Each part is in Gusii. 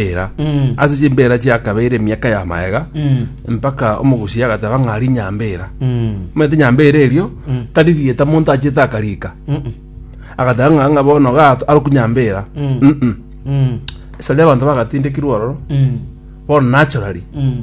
era Mm. ase chimbeera chiakabeire emiaka ya maega Mm. mpaka omogusi agateba ng'a ari nyambeera Mm. omanyete nyambeera erio tari rieta monto achiete akarika Mm. agateba ng'a ng'a bono gato aroku nyambeera Mm. Mm-mm. Mm. esari abanto bagatindekirwe ororo Mm. bono nachorari Mm.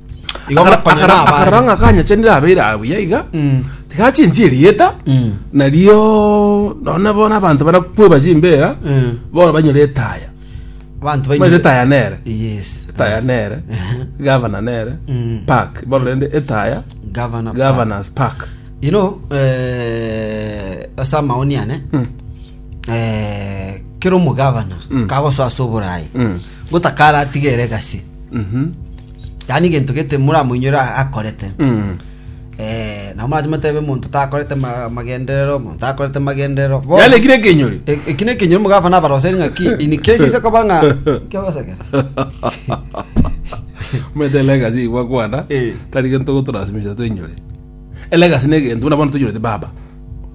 Igo Akara- barakonyana akara- abande. akarora ng'a akanyachenire abeire aye buya iga Mm. tigachinchie erieta Mm. nario none bono abanto barakweba chimbera Mm. bono banyore etaya Abanto baire baino- etaya nere Yes. etaya nere Ehe. gavana nere Mm. park bono rende etaya Governor. governors park You know, eh, ase amaoni ane, Mm. eh, kera omogavana Mm. kagosoa ase oborayi Mm. gotakara atigere gasi Mhm. Yaani gento gete moramoinyore a- akorete. Eh, nabo marache motebe monto takorete ma- magenderero, monto takorete magenderero. Bo- yani ekire ekenyori E- eki ne ekenyoro mogafa nabaroseri ng'a ki in case ise koba ng'a kiabasakera omanyete legacy igwa kwana Eh. tari gento gotorasimisha twenyore elegacy na egento buna bono toinyorete baba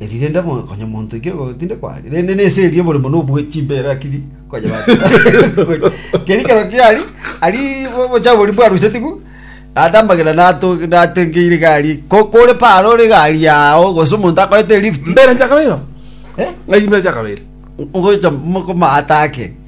Eri rende mo- konya monto iki igo tinde kwari rende nese eri oboremo nobwe chimbere akiri konya keri kero kiari ari bo- bochafu bori bwarusetigu ande amagena nato- natengeire gari ko- kore para ore gari yao gose omonto akoete lift mbere nchakabeire oo Eh? ng'ai mbere nchakabeire ngocha mokomata ake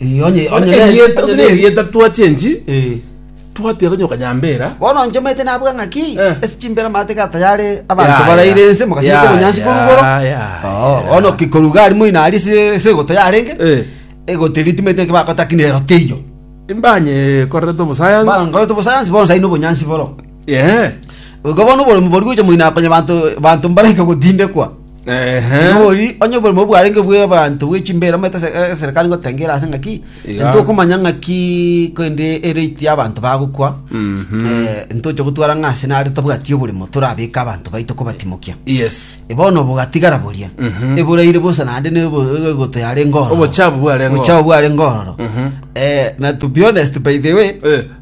Eh, onye Bono onye ne- erieta onye gose ne- nerieta twachenchi Eh. twatira konye okanyambera bono inche omanyete nabuga ng'aki Eh. ase chimbero amate ga tayari Ya, abanto ya. baraire ense mogasete Ya, obonyansi ya, korugoro ya, Oo, ya. bono kikoruga ari moino ari se se egoto yarenge Eh. egoto eri timanyete nki bakotakinire roteiyo imbanye korerete obosayansi bangoreto bosayansi bonsa ino obonyansi boro Ehe. Goika bono oboremu boria gocha moino akonye banto banto mbaraike gotindekwa. Ehe. Nigo ori onye oboremu bwarenge bw'abanto bwe chimbere omanyete ase- eh, eserekari ngotengera ase ng'aki Iga. ntokomanya ng'aki korende erate y'abanto bagokwa Mhm. eh, ntocha gotwara ng'a ase nare tabwati oboremo torabeke abanto baito kobatimokia Yes. bono bogatigara boria Mhm. eboraire bosa naende negoto yare ngororo Obochabu bware ngororo. obochabu bware ngororo Mhm. Eh, na to be honest by the way Eh.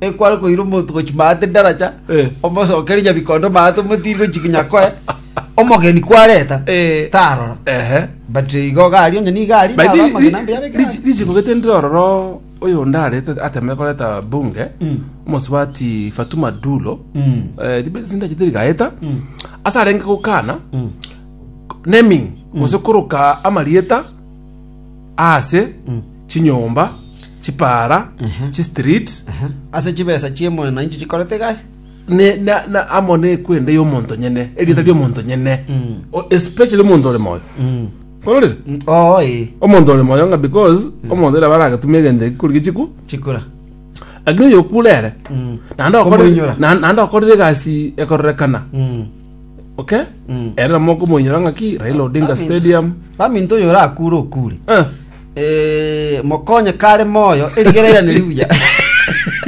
ekware koira omonto gochi maate daracha Eh. omosokere nyabikondo maate omotiri gochi nyakoe omogeni kwareta Eh. tarora ehe but igo gari onye nigo ari By the way, amagena ri- mbiyabeke richi- gari. richiko gete ndire ororo oyo onde arete ateme koreta bunge Mm. omosubati fatuma dulo Mm. eh, tibe- sindache tiri gaeta Mm. ase arenge gokana Mm. naming gose koroka amarieta aase chinyomba, chipaara, chistreet, Ase chibesa chie mwananchi chikorete egasi. ne- na- na amo nekwenda y'omonto nyene, erieta ry'omonto nyene, O- especially omonto ore moyo. Ororire? Mm, Oo ee. Omonto ore moyo ng'a because omonto ere baragatuma egento ekikorigia chiku, Chikura. lakini oyo okure ere, Mm. naende okore- Komoinyora. na- naende okorire egasi ekororekana. Mm. Okay. Mm. Ere na moko monyora ngaki Raila Odinga Famine. Stadium. Famine to yora akure okure. Eh. Eh, mokonye kare moyo erigera ira neribuya.